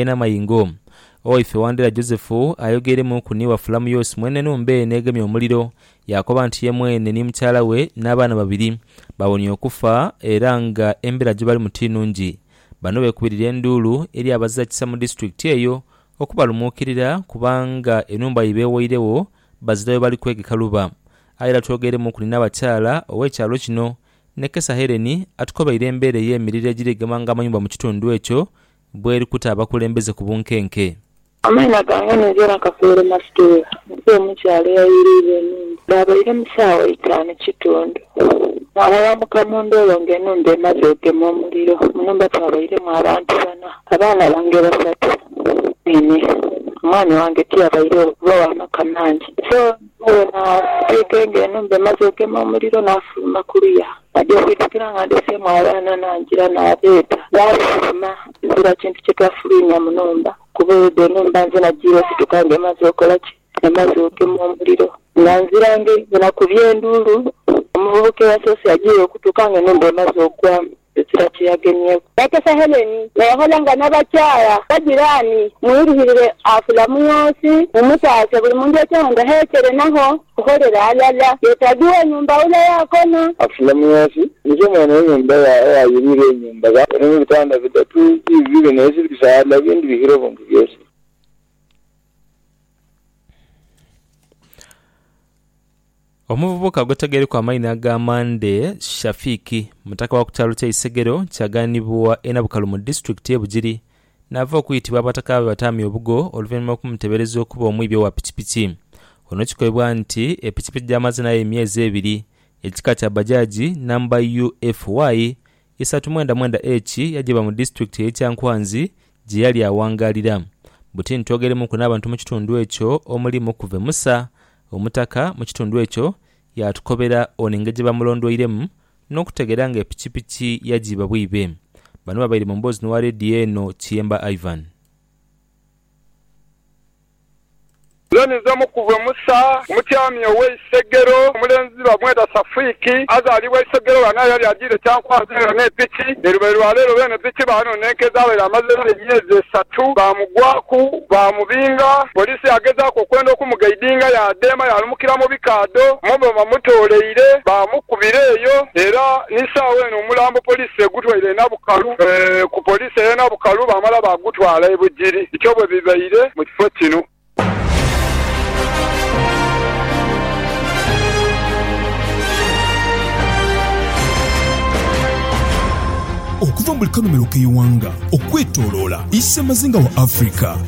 Ena amayengo. O ife Wandera Josefu ayogeeremuuku ni wa Fulamuyosi mwene enhumba eno egemye omuliro, yaakoba nti ye mwene ni mukyala we n'abaana babiri bawonie okufa era nga embeera gye balimu ti nnungi. Bano beekubirira enduulu eri abaziza kisa mu disitulikiti eyo okubalumuukirira kubanga enhumba ye beewairegho bazirayo bali kwegeka luba. Aye era twogeeremuuku ni Naabakyala ow'ekyalo kino, Nekesa Hellen atukobeire embeera ey'emiriro egiri egema nga amayumba mu kitundu ekyo bw'eri kuta abakulembeze ku bunkenke. Amaina gange ninze Nakafeero Mastuula, nva mu kyalo eyayiriirwa enhumba. Baabaire mu saawa eitaanu kitundu, naaghalambuka mu ndoolo ng'enhumba emaze ogema omuliro. Mu nhumba twabairemu abantu bana, abaana bange basatu nhenhe. Omwami wange tiyabairegho kuba wa maka mangi. So, nibwo bwe naasiika engo enhumba emaze ogema omuliro, naafuluma ku luya. Naja okwitukira nga ndeseemu abaana nangira nabeeta. Baafuluma ezira kintu kye twafuluimya mu nhumba kuba oyo dhe nhumba nze najiire osituka nga emaze okola ki? Emaze ogema omuliro. Nga nzira ngeri bwe nakubye enduulu, omuvubuka eyasoose yajiire okutuuka nga enhumba emaze okugwamu ezira kye yagemyeku. Bakesa Hellen n'eghala nga n'abakyala bajiraani mwirihirire afula mu nsi mumutaase buli muntu eky'omunda heekere nagho. Okholere alala. Yetaagiwa enyumba ule yaakona. Afule mu nsi. Nicho mwene enyumba eyayirira enyumba ba. Eri mu bitanda bidatu, biibyo bine ebiri bisaala, ebindi bihire obuntu byosi. Omuvubuka ogwetegereku amaina aga Mande Shafiki, mutaka wa ku kyalo kye Isegero kyaganibwa e Nabukalu mu disitulikiti ye Bugiri Naava okwitibwa abataka be bataamya obugo oluvanhuma okumutebereza okuba omwibi owa pikipiki ono kikoibwa nti epikipiki gyamaze nayo emyezi ebiri ekika kya Bajaj namba UFY isatu mwenda mwenda H yajiba mu disitulikiti eye Kyankwanzi gyeyali awangalira buti ntwogeremuku n'abantu mukitundu ekyo omuli Mukuve Musa omutaka mukitundu ekyo yatukobera ono engeri gyebamulondweiremu n'okutegeera nga epikipiki yagyiba bwiibe. Bano babaire mu mboozi n'owa leediyo eno Kiyemba Ivan. Zoni z'omu ku bwe Musa, omutyaami ow'e Isegero. Omulenzi bamweta Safuiki, azaalibwa Isegero ghano aye yali ajiire Kyankwanzi era ne piki ye lube lwa leero. Beene piki baanonenkeeza abaire amazeegho emyezi esatu baamugwaku baamubinga. Yesu yaagezaaku okwenda okumugaidinga, yaadheema yaalumukira mu bikaadho mwe bamamutooleire, baamukubira eyo. Era ni saagho eno omulambo poliisi egutwaire e Nabukalu ku poliisi ey'e Nabukalu baamala baagutwala e Bugiri. Bityo bwe bibaire mu kifo kino. Okuva mu buli kanhumiro k'eighanga okwetoloola Isemazinga wa Africa,